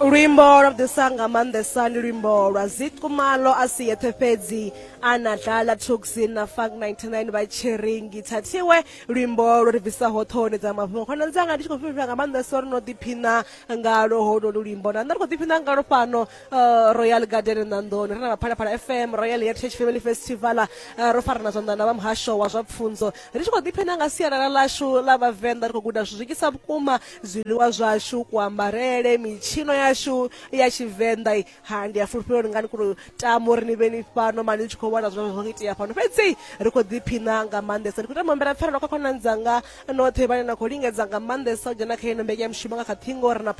luimbo lwa ḓisa nga maanḓesa ndi luimbo lwa zikumalo a si yeṱhe fhedzi a na dlala tuxi na funk 99 vha tshiringi thathiwe luimbo lwo ri bvisaho ṱhohoni dza mafhungo khonani dzanga ndi tshi khou fhifhira nga maanḓesa uri no ḓiphina ngalo holwo lu luimbo na nṋe ri khou ḓiphina ngalo fhano Uh, royal garden nandoni ri na vhaphalaphala fm royal heritage family festival uh, ro farana zwanḓa na vha muhasho wa zwa pfunzo ri tshi khou ḓiphina nga sialala lashu la vhavenḓa ri khou guda zwi zwikisa vhukuma zwiḽiwa zwashu kuambarele mitshino yashu ya tshivenḓa ha ndi a fulufhela uri ngani kuri tamo uri ni vhe ni fhano mani ni tshi khou vhona zwine zwa itea fhano fhedzi ri khou ḓiphina nga maanḓesa ndi khou tama mbela pfarelo kha khonani dzanga noṱhe vhane na khou lingedza nga maanḓesa u dzhena kha ino mbekanyamushumo nga kha ṱhingo ri na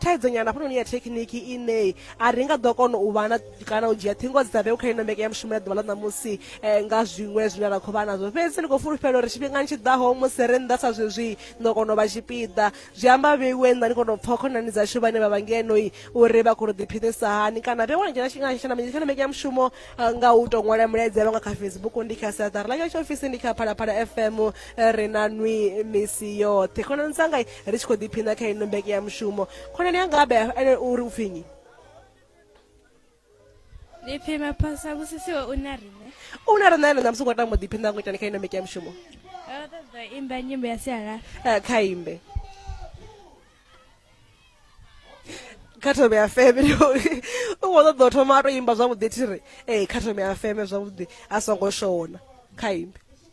thaidzo nyana hafhanoni ya thekhiniki ine a ri nga ḓo kona u vhana kana u dzhia ṱhingo dzi sa vheu kha ino mbeke ya mushumo ya ḓuvha ḽa ṋamusi um nga zwiṅwe zwine ra khou vha nazwo fhedzi ndi khou fulufhela uri tshifhingani tshi ḓaho musi ri nnḓa sa zwezwi ndo kona u vha tshipiḓa zwi amba vheiwe nnḓa ni kona u pfha khonani dzashu vhane vha vha ngenoi uri vha khou ri ḓiphinisa hani kana vhe wana dzhena tshifhingana mbeke ya mushumo eh, nga u tou ṅwala milaedza yavho nga kha facebook ndi kha sathara ḽa tsho ofisi ndi kha phalaphala fm eh, ri na nwi misi yoṱhe khonani dzanga ri tshi khou ḓiphina kha ino mbeke ya mushumo khonani yanga abe ene u ri u pfinyi ḓiphina phasa vhusisiwe u na riṋe u na riṋe ene ṋamusi u khou tamba u ḓiphina ngo itani kha ino mbeke ya mushumo ro ṱoḓa imba nyimbo ya sialala eh, kha imbe kha thome ya feme u khou ṱoḓa u thoma a to imba zwavhuḓi thiri ee eh, kha thome ya feme zwavhuḓi a songo shona kha imbe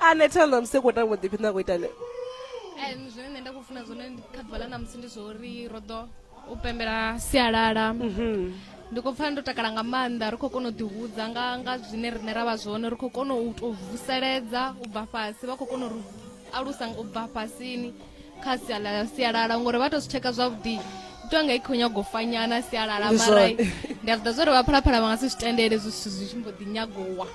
ane thanda musi khou tamba ḓiphi nda khou ita ne zwine nṋe nda khou funa zwone kha ḓuvha ḽa na musi ndi zwauri ro ḓo u pembela sialala mhm. ndi khou pfa ndo takala nga maanḓa ri khou kona u ḓihudza nga nga zwine riṋe ra vha zwone ri khou kona u tou vuseledza u bva fhasi vha khou kona u alusa u bva fhasini kha sia ḽa sialala ngori vha to zwi tsheka zwavhuḓi itiwa nga i khou nyago fanyana sialala Ndi mara zwone. ndi a zwi ḓa zwa uri vhaphalaphala vha nga si zwi tendele zwi zwithu zwi tshi mbo ḓi nyagowa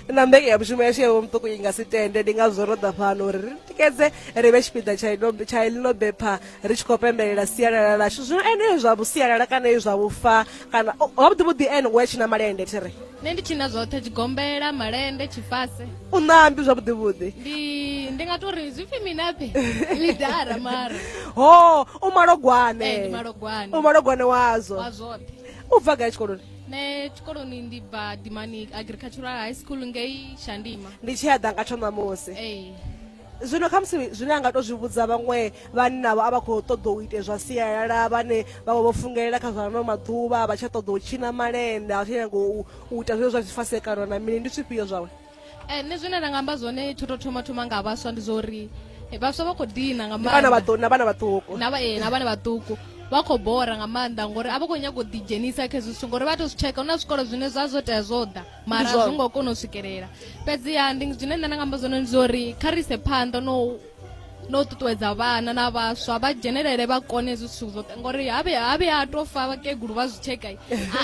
na mbenge ya mushumo yashu yawe muṱuku i nga si tende ndi ngazwo ro ḓa fhano uri ri tikedze ri vhe tshipiḓa tsha ino- tsha ḽino bepha ri tshi khou pembelela sialala lashu zwino eneo zwa vhusialala kana e zwa vhufa kana o- wa vhuḓi vhuḓi ene ngoya tshina malende thi ri nṋe ndi tshina zwoṱhe tshigombela malende tshifase u ṋambi zwavhuḓi vhuḓi ndi ndi nga tori zwi pfi minape lidara mara ho u malogwane Eh, ndi malogwane. u malogwane wazwo wa zwoṱhe u bva gai tshikoloni nṋe tshikoloni ndi bva dimani agricultural high school ngei shandima ndi tshi ya ḓa nga tsho ṋamusi ee zwino khamusi zwine a nga to zwi vhudza vhaṅwe vhannavho a vha khou ṱoḓa u ite zwa sialala vhane vha vha vho fungelela kha zwa ano maḓuvha vha tsha ṱoḓa u tshina malende a tsha nyago u ita zwine zwa zwifasekano na mini ndi zwifhio zwawe eh, nṋe zwine nda nga amba zwone tsho to thoma thoma nga vhaswa ndi zwa uri eh, vhaswa vha khou dina nga maana vhana vhaṱuku na eh, vhana vhaṱuku vha khou bora nga maanḓa ngori a vha khou nyaga u ḓidzhenisa kha hezwi zwithu ngori vha to zwi tsheka hu na zwikolo zwine zwa zwo tea zwo ḓa mara zwo ngo kona u swikelela fhedziha ndi zwine nṋe nda nga amba zwone ndi zwa uri kha ri ise phanḓa no no ṱuṱuwedza vhana na vhaswa vha dzhenelele vha kone hezwi zwithu zwoṱhe ngori habe habe ha to fa vhakegulu vha zwi tsheka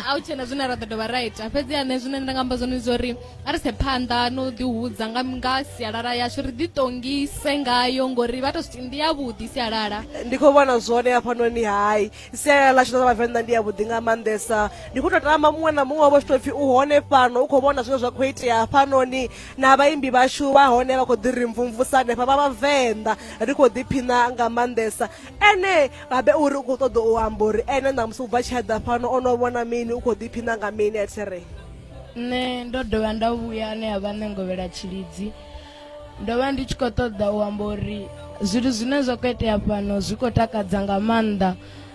a u tshena zwine ra ḓo dovha ra ita fhedzi ane zwine nda nga amba zwone ndi uri a ri se phanḓa no ḓihudza nga nga sialala yashu ri ḓiṱongise ngayo ngori vha to ndi yavhuḓi sialala ndi khou vhona zwone hafhanoni hai sialala ḽashu ḽa vhavenḓa ndi yavhuḓi nga maanḓesa ndi khou tou tama muṅwe na muṅwe wavho tshi tou pfhi u hone fhano u khou vhona zwine zwa khou itea hafhanoni na vhaimbi vhashu vha hone vha khou ḓi ri mvumvusa hanefha vha vhavenḓa ri khou ḓiphina nga maanḓesa ene babe uri u khou ṱoḓa u amba uri ene ṋamusi u bva tshi eḓa fhano o no vhona mini u khou ḓiphina nga mini a thiri nṋe ndo dovha nda vhuya ane a vha nṋe ngovhela tshilidzi ndo vha ndi tshi khou ṱoḓa u amba uri zwithu zwine zwa khou itea fhano zwi khou takadza nga maanḓa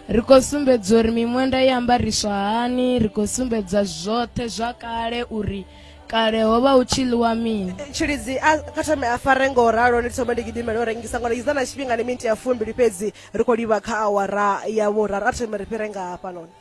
ri khou sumbedza uri miṅwenda i ambariswa hani ri khou sumbedza zwoṱhe zwa kale uri kale ho vha hu tshi ḽiwa mini eh, tshilidzi kha thome a fare ngo ralo ndi thoma ndi gidimela u rengisa ngori iza na tshifhinga ni minti ya fumbili fhedzi ri khou livha kha awara ya vhuraru a thome ri fhire nga hafhanoni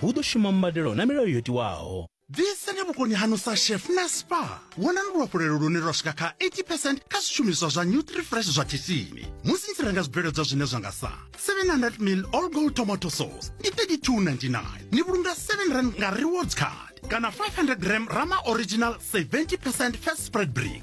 hu ḓo shuma mbadelo na milayo yo tiwaho. Ḓisani vhukoni haṋu sa chef na spa. Vhonani luhafhulelo lune lwa swika kha 80 percent kha zwishumiswa zwa Nutrifresh zwa khishini musi ni tshi renga zwibveledzwa zwine zwa nga sa 700 ml all gold tomato sauce ndi 32.99 ni vhulunga 7 rand nga rewards card kana 500 gram rama original 70 percent fat spread brick